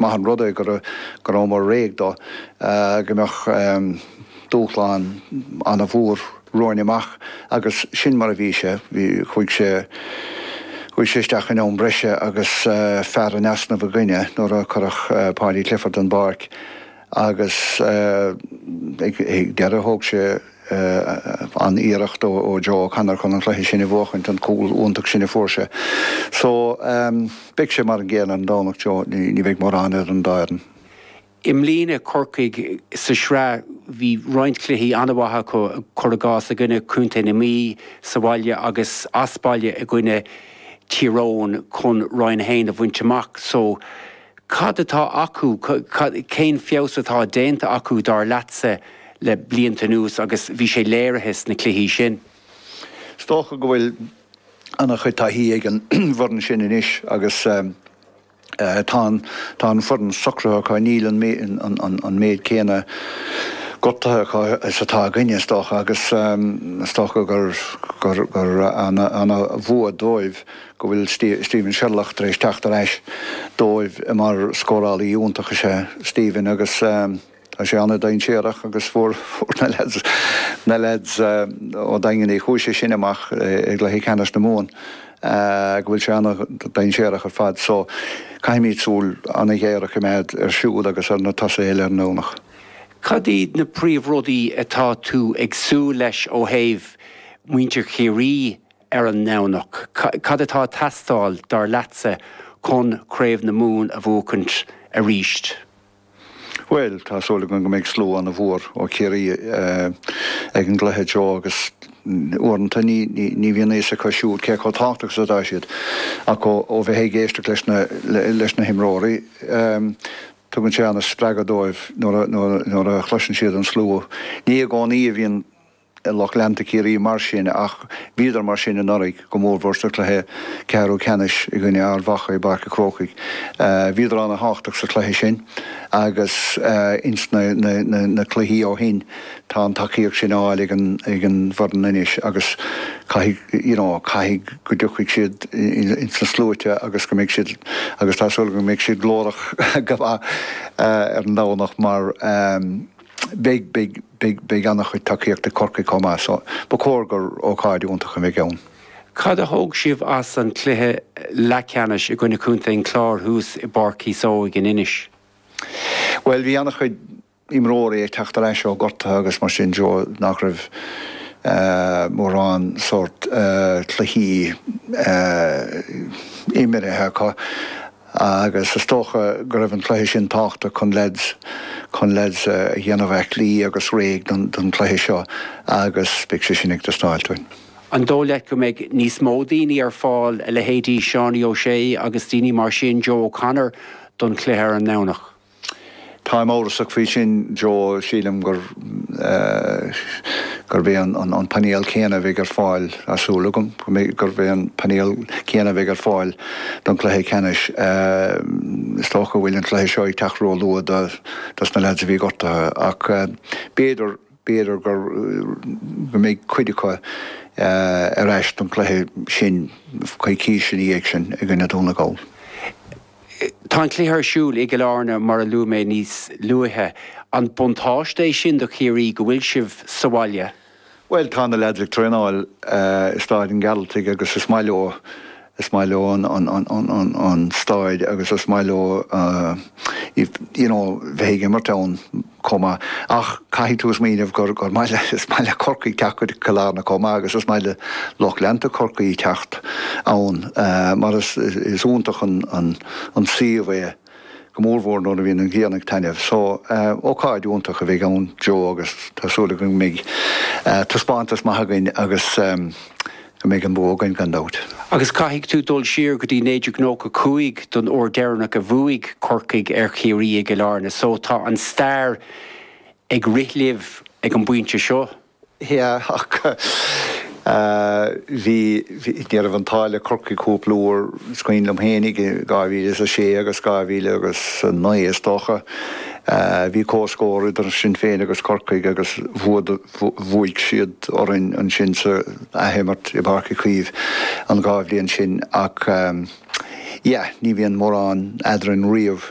maith an rud é go rabhamar réidh dó, go mbeadh dúshlán an-mhór romhainn amach agus sin mar a bhí sé. Chuaigh sé isteach in am breise agus fear in easnamh againne nuair a cuireadh Paudie Clifford den bpáirc agus ag deireadh thóg sé, an-iarracht ó Joe O'Connor chun an chluiche sin a bhuachaint, an cúl iontach sin a fuair sé. So, beidh sé mar an gcéanna ar an Domhnach, you know, ní bheidh mórán idir an dá fhoireann. I mbliana, Corcaigh sa tsraith, bhí roinnt cluichí an-mhaith acu, cur i gcás, i gcoinne Contae na Mí sa bhaile agus as baile i gcoinne Tír Eoghain chun Roinn 1 a bhaint amach. So. Cad atá acu, cén feabhas atá déanta acu, dar leatsa, le blianta anuas agus bhí sé léirithe sna cluichí sin? Is dócha go bhfuil an-chuid taithí ag an bhfoireann sin anois agus tá tá an foireann socraithe acu. Níl an méid céanna gortuithe acu is atá againne, is dócha, agus is dócha gur an-bhua dóibh go bhfuil Steven Sherlock tar éis teacht ar ais dóibh mar scórálaí iontach is ea Steven agus tá sé an-dainséarach agus fuair na leaids ó Dhaingean Uí Chúise sin amach i gcluiche ceannais na Mumhan go bhfuil sé an-dainséarach ar fad so caithfimid súil an-ghéar a choimeád ar siúd agus ar na tosaithe eile ar an Domhnach. Cad iad na príomhrudaí atá tú ag súil leis ó thaobh muintir Chiarraí ar an nDomhnach. Cad atá ag teastáil, dar leatsa, chun Craobh na Mumhan a bhuachaint arís? Bhuel, tá súil againn go mbeidh slua ana mhór ó Chiarraí ag an gcluiche, you know, agus uaireanta ní bhíonn a fhios acu siúd cé chomh tábhachtach is atá siad, ach ó bheith ag éisteacht leis na himreoirí, tugann sé ana spreagadh dóibh nuair a chloiseann siad an slua. Ní i gcónaí a bhíonn. lucht leanta Chiarraí mar sin ach bhíodar mar sin anuraidh, go mórmhór sa chluiche ceathrú ceannais i gcoinne Ard Mhacha i bPáirc a' Chrócaigh. Bhíodar an-tábhachtach sa chluiche sin agus ins na cluichí ó shin tá an tacaíocht sin á fháil ag an bhfoireann anois agus caithfidh, you know, caithfidh go dtiocfaidh siad ins na sluaite agus go mbeidh siad, agus tá súil agam go mbeidh siad glórach go maith ar an Domhnach mar beidh, beidh, Beidh an-chuid tacaíocht ag Corcaigh chomh maith so ba chóir gur ócáid iontach a bheidh ann. Cad a thóg sibh as an cluiche leathceannais i gcoinne Contae an Chláir thuas i bPáirc Chíosóig in Inis? Bhuel bhí an-chuid imreoirí ag teacht ar ais ó gortuithe agus mar sin de nach raibh mórán sórt cluichí imirithe acu. Agus is dócha go raibh an cluiche sin tábhachtach cun leaids, cun leaids a dhéanamh aiclí agus réidh don, don cluiche seo agus beidh sé sin ag teastáil uainn. An dóigh leat go mbeidh níos mó daoine ar fáil, a leithéidí Seánie O'Shea agus daoine mar sin, Joe O'Connor, don cluiche ar an nDomhnach? Táim amhrasach faoi sin Joe, sílim gur, gurb é an painéal céanna a bheidh ar fáil, tá súil agam, gurb é an painéal céanna a bheidh ar fáil don chluiche ceannais. Is dócha go bhfuil an cluiche seo ag teacht róluath dos na leaids a bhí gortaithe ach b'fhéidir, b'fhéidir go mbeidh cuid acu ar ais don chluiche sin coicís ina dhiaidh sin i gcoinne Dhún na nGall. Tá an cluiche ar siúl i gCill Airne mar a luaigh mé níos luaithe. An buntáiste é sin do Chiarraí go bhfuil sibh sa bhaile? Bhuel, tá na leaids ag traenáil i Stáid an Ghearaltaigh agus is maith leo, is maith leo an stáid agus is maith leo you know bheith ag imirt ann. chomh maith. Ach caithfidh tú smaoineamh gur maith le Corcaigh teacht go Cill Airne chomh maith agus is maith le lucht leanta Chorcaí teacht ann mar is iontach an suíomh é, go mórmhór nuair a bhíonn an ghrian ag taitneamh. So, ócáid iontach a bheidh ann Joe agus tá súil againn go mbeidh taispeántas maith againn agus. go mbeidh an bua againn. Gan dabht. Agus caithfidh tú dul siar go dtí 1995 don uair deireanach a bhuaigh Corcaigh ar Chiarraí i gCill Airne, so tá an stair ag rith libh ag an bpointe seo. Yeah, ach bhí, ní raibh an t-ádh le Corcaigh cúpla uair, is cuimhin liom féin i 2006 agus 2000 agus 9, is dócha, bhí comhscór idir sinn féin agus Corcaigh agus bhuadar, Bhuaigh siad orainn ansin sa athimirt i bPáirc Uí Chaoimh an dhá bhliain sin ach yeah ní bhíonn mórán eadrainn riamh.